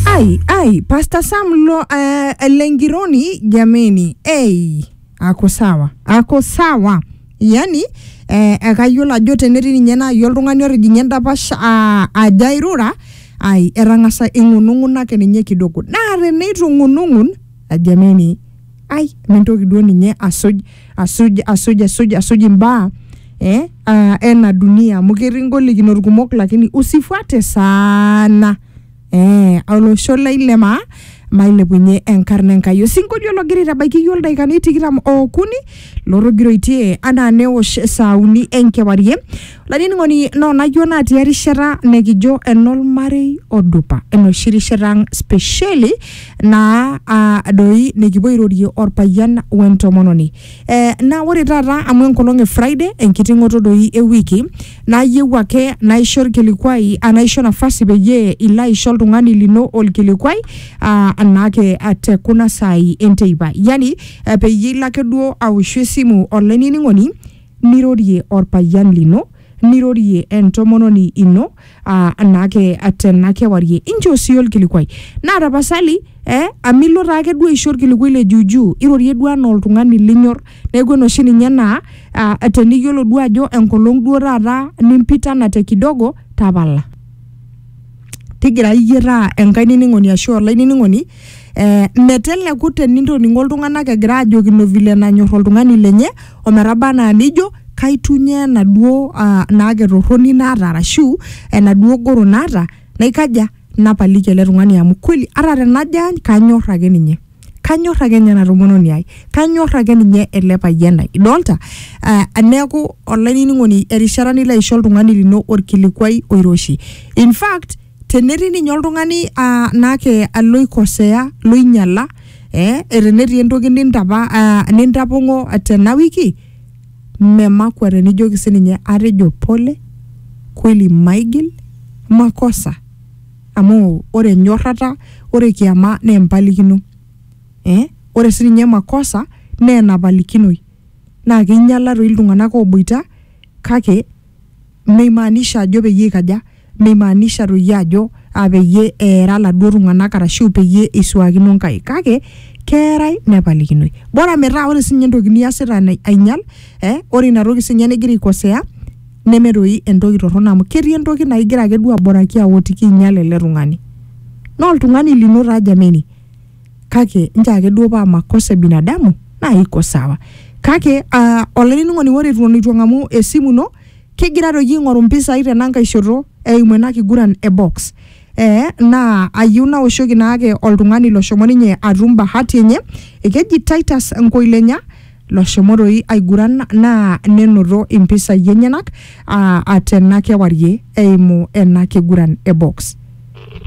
Ai, ai, Pastor Sam lo, uh, Lengironi jameni, ei, ako sawa, ako sawa. Yani eh, ekayiolo ajo tenetii ninye naaji oltung'ani otijing'a endapash ah, aja airura, ai etang'asa ing'unung'unaki ninye kidogo. Naa teneitu ing'unung'un ajameni ai mintoki duo ninye asuj asuj asuj asuj asuj imbaa eh, uh, ena dunia amu ketii ngolikinot kumok lakini usifuate sana eh, olosho lai le maa mailepunye enkarna enkai osinkolio logira aitabaiki iyio ildaikani tikitam okuni lotogiroitie anaa newosh saa uni enkewarie Laining'oni no najua natii erishata nekijo enolmarei odupa enoshi rishata ang spesheli naa ah, doi nikipuo airorie orpayian wentomononi eh, naa ore taata amu enkolong e Friday enkiting'oto doi ewiki nayieu ake naisho orkilikuai ah, naisho nafasi peyie ilo aisho oltung'ani lino orkilikuai ah, anaake ah, te kuna saai enteipa yani eh, peyie ilo ake duo aoshu esimu olainining'oni nirorie olpayian lino, nirorie entomononi ino aa naake tena kewarie. Inchoo sii olkilikuai. Naa tapasali eh amu ilo taake duo aisho olkilikuai le juujuu, irorie duo anaa oltung'ani linyor. Neeku enoshi ninye naa aa teniyiolo duo ajo enkolong duo taata nimpitana te kidogo, tapala. tigira iyie taa enkae nining'oni ashu olainining'oni eh, meteleku tenintoning'o iltung'anak egira ajokino vile nanyor oltung'ani lenye ometaba anaa nijo kaitunye enaduo uh, naake torroni naata arashu enaduo goro naata naikaja napaliki ele tung'ani amu kweli ata tenajo aany kanyor ake ninye kanyor ake ninye ena tomononi ai kanyor ake ninye ele payian lai idolta uh, neeku olainining'oni erishata nilo aisho oltung'ani lino orkilikuai oiroshi in fact tenetii ninye oltung'ani uh, naake loikosea loinyala eh, tenetii entoki nintapa uh, nintapong'o tena wiki memakwa tenijoki sininye atejo pole kweli maigil makosa Amu ore enyorrata, ore kiama naa empalikino eh ore sininye makosa naa enapalikinoi. Naa keinyiala toi iltung'anak ooboita kake meimaanisha ajo peyie eikaja, meimaanisha toi ajo peyie eera iladuo tung'anak arashu peyie eisuakino inkaik kake keerae nepalikinoi. Bora metaa ore siininye entoki niasita ainyial eh ore ina toki siininye nigira aikosea neme doi entoki torrono amu ketii entoki naa igira ake duo aboraki awotiki inyal ele tung'ani naa oltung'ani lino taa jameni kake nchoo ake duo paa makosa e binadamu naa iko sawa kake uh, olainining'oni ore eton eitu eng'amu esimu ino kigira doi aing'oru mpisai tenankae shoto eimu ena kiguran e box eh, naa ayieu naoshoki naake oltung'ani loshomo ninye atum bahati enye ekeji Titus Nkoilenya loshomo doi aiguran naa nenoto impisai enyenak aa tena kewarie eimu ena kiguran e box.